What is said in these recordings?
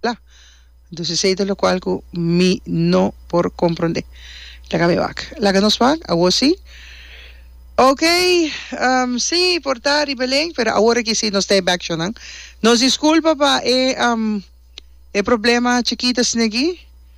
la. Dus esei ta lokual ku mi no por komprondé. Laga mi wak. Laga nos wak. Awor si. Ok, si, por ta riba len, pero awor aki si nos ta e bèkshonnan. Nos diskulpa pa e problema chikita snegi.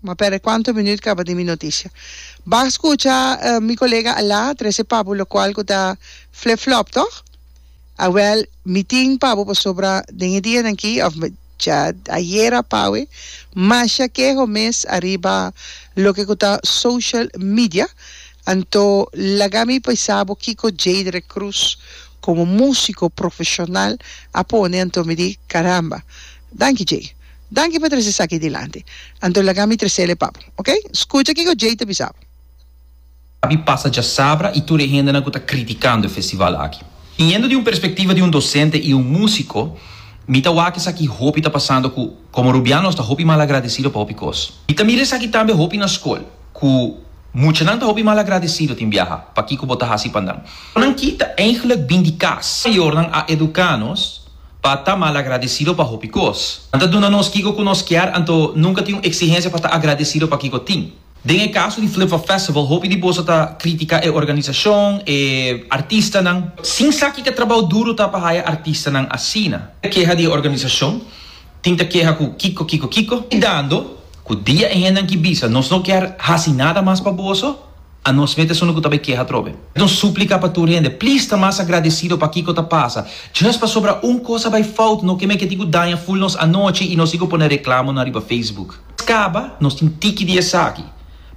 Ma perde cuanto minuut caba di mi noticia. Bak scucha mi colega a la trece pabu locual cu ta flip flop toch? Awel mi tin pabu pasobra den e dianan aki of dja ayer apawe masha keho mes ariba loke cu ta social media anto laga mi pisa bo kico Jadre Cruz como musico profesional a pone anto mi di caramba. Danki Jay. Danki pa trese esaki dilanti. Anto laga mi tresele pa bo. Ok? Skucha kiko Jay ta bisa bo. Abi pasa djasabra y tur e hendenan cu ta criticando e festival aki. Biniendo di un perspectiva di un docente y un musico, mi ta wak esaki hopi ta pasando cu como Rubian nos ta hopi malagradecido pa hopi cos. Mi ta mira esaki tambe hopi na scol, cu muchanan ta hopi malagradecido tin biaha pa kico bo ta haci pa nan. Nan ki ta eigenlijk bin di cas mayornan a educa nos. pa ta malagradecido pa hopi cos. Nan ta duna nos kico cu nos kier anto nunca tin un exigencia pa ta agradecido pa kico tin. Den e caso di Flipflop Festival hopi di boso ta critica e organizacion, e artistanan. Sin sa kica trabao duro ta pa haya artistanan asina. Keha di e organizacion tin ta keha cu kico kico kico. Dando cu dia e hendenan ki bisa nos no kier haci nada mas pa boso. A nos met esun lo ku ta bai keha atrobe. Nos suplika pa tur hende, please ta mas agradesido pa kiko ta pasa. Just pasobra un kos a bai fout no ke men kenti ku daña ful nos anochi i nos tin ku pone reklamo nan riba Facebook. Kaba nos tin tiki di esaki.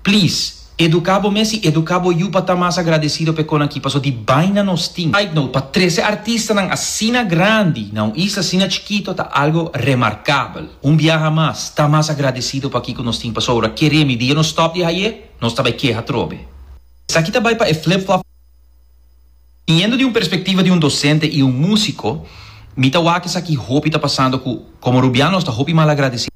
Please, eduka bo mes i eduka bo yu pa ta mas agradesido pa e konakí paso di bai nan nos tin. Side note, pa trese artistanan asina grandi na un isla asina chikitu ta algo remarkabel. Un biaha mas, ta mas agradesido pa kiko nos tin pasobra, keremi, di e nos stòp di haye? nos ta bai keha trobe. Esaki ta bai pa e flip-flop. Biniendo di un perspectiva di un docente y un musico, mi ta wak esaki hopi ta pasando cu como Rubian nos ta hopi malagradecido.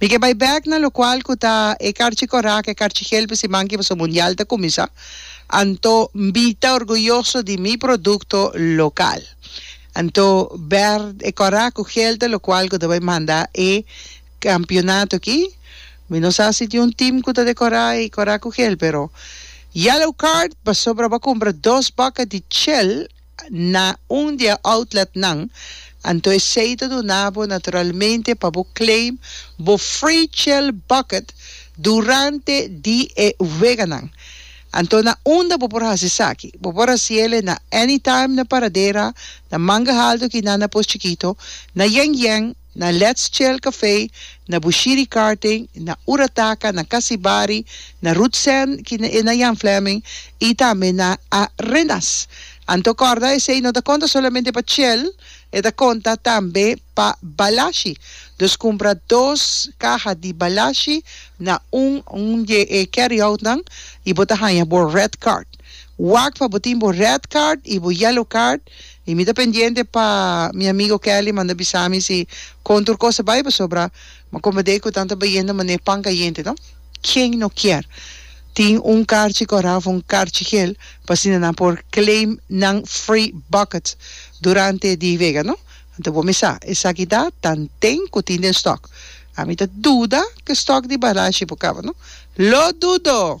Mi ke bai bek na lokual ku ta e karchi korak, e karchi hel pe siman ke boso mundial ta kuminsa, anto mi ta orguyoso di mi produkto lokal. Anto ber e korak ku hel ta lokual ku ta bai manda e kampionato aki. Mi no sa si tin un tim ku ta dekorá e korak ku hel, pero Yellow Card pasobra bo a kumpra dos bòkè di chèl. na un di e outletnan, anto esei ta duna bo naturalmente pa bo claim bo free chill bucket durante di e weganan. Anto na unda bo por hasi esaki? Bo por hasi el e na Anytime, na Paradera, na Manga Haldo, Kinan, na Pos Chikito, na Yen Yen, na Let's Chill Café, na Bushiri Karting, na Ura Taka, na Kasibari, na Ruth Sen ki e na Jan Fleming y tambe na Arenas. Anto corda esey no ta conta solamente pa Chill, e ta conta tambe pa Balashi. Nos cumpra dos caha di Balashi na un un di e carryoutnan y bo ta haya bo red card. Wak pa bo tin bo red card y bo yellow card. I mi ta pendiente pa mi amigo Kelly manda bisa mi si con tur cos ta bay pasobra mi a comprende cu tan ta bayendo mané pan cayente no. Quien no kier tin un carchi cora of un carchi gel pa asina nan por claim nan free bucket durante di vega no. Anto bo mi sa esaki ta tanten cu tin den stock. Ami ta duda cu stock di barashi por caba no. Lo dudo!